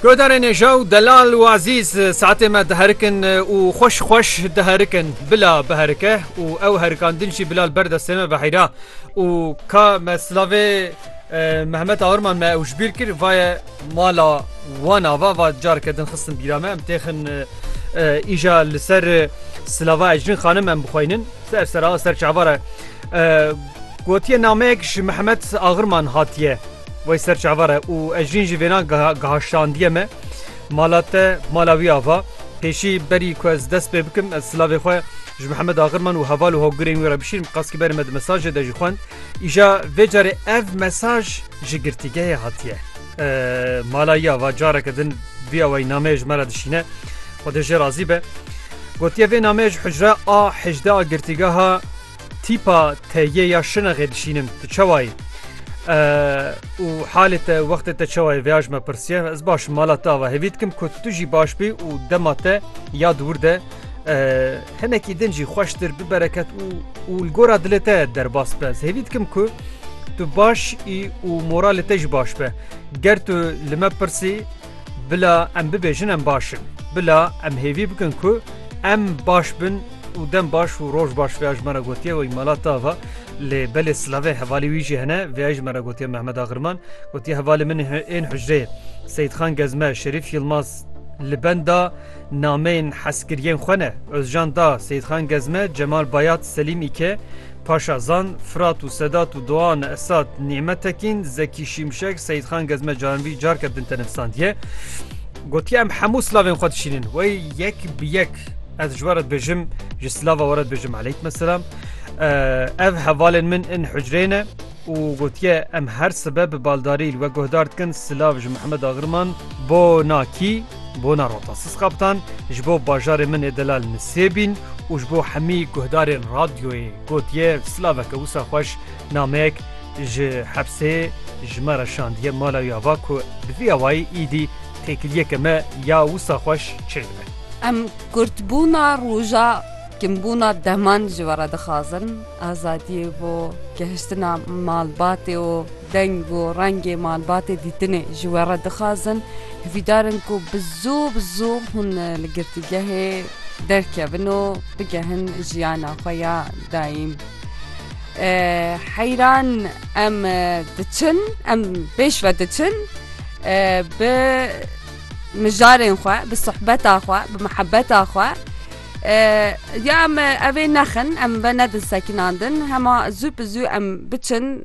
Guhdarê nêja û delal û ezîz saetê me diherikin û xweş xweş diherikin. Bila biherike û ew herikandin jî bila li ber destê me biheyra û ka me silavê Mehmet Aurman me ew ji bîr kir vaye mala wan ava va careke din xistin bîra me em têxin îja li ser silava Ecrin xanim em bixweynin ser sera ser çavara gotiye nameyek ji Mehmet Aurman hatiye. Wey ser çavar e û ez jîn ji vênan gihaştandiye me mala te mala wî ava. Pêşî berî ku ez dest pê bikim ez silavê xwe ji Mihemed Agirman û heval û hogirên wî re bişînim qas ki berê me di mesajê de jî xwend. Îja vê carê ev mesaj ji girtîgehê hatiye. Mala yî ava careke din vî awayî nameyê ji me re dişîne. Xwedê jê razî be. Gotiye vê nameyê ji hicre a hejdeh a girtîgeha Tîpa te yê ya şinexê dişînin tu çawa yî? û halê te wextê te çawa yê vêya ji me pirsiye ez baş mala te ava hevî dikim ku tu jî baş bî û dema te ya dûr de hinekî din jî xweştir bibereket û û li gora dilê te derbas be ez hevî dikim ku tu baş î û moralê te jî baş be ger tu li me pirsî Bila em bibêjin em baş in. Bila em hêvî bikin ku em baş bin û dem baş û roj baş vêya ji me re gotiye wê mala tava lê belê silavê hevalî wî jî hene vêya ji me re gotiye Mehmet Agirman gotiye hevalê min ên hicreyê Seyîdxan Gezme, Şerîf Yilmaz li benda Nameyên hezkiriyên xwe ne, Ozjan Da, Seyîdxan Gezme, Cemal Bayat, Selîm Îke, Paşa Zan, Firat û Sedat û Doane Esad, Nîmet Tekîn, Zekî Şimşek, Seyîdxan Gezme caranvî carke din tenivîsandiye. Gotiye em hemû silavên xwe dişînin. Wey yek bi yek ez ji we re dibêjim, ji silava we re dibêjim eleykme silam. Ev hevalên min in hucrê ne û gotiye em her sibe bi baldarî li we guhdar dikin silav ji Mihemed Agirman bo nakî. Bona Rota Sizqaptan ji bo bajarê min ê delal Nisêbîn û ji bo hemî guhdarên radyoyê gotiye silaveke wisa xweş nameyek ji hepsê ji me re şandiye mala wî ava ku bi vî awayî îdî têkiliyeke me ya wisa xweş çêl bibe. Em kurtbûna roja kinbûna deman ji we re dixwazin. Azadiyê bo gehiştina malbatê û deng û rengê malbatê dîtinê ji we re dixwazin. Hivîdar in ku bi zû bi zû hûn li girtîgehê derkevin û bigehin jiyana xwe ya dayîn. Heyran em diçin, em pêş ve diçin bi mijarên xwe, bi suhbeta xwe, bi mihebeta xwe. Ya em evê nexin em venedin sekinandin hema zû bi zû em biçin.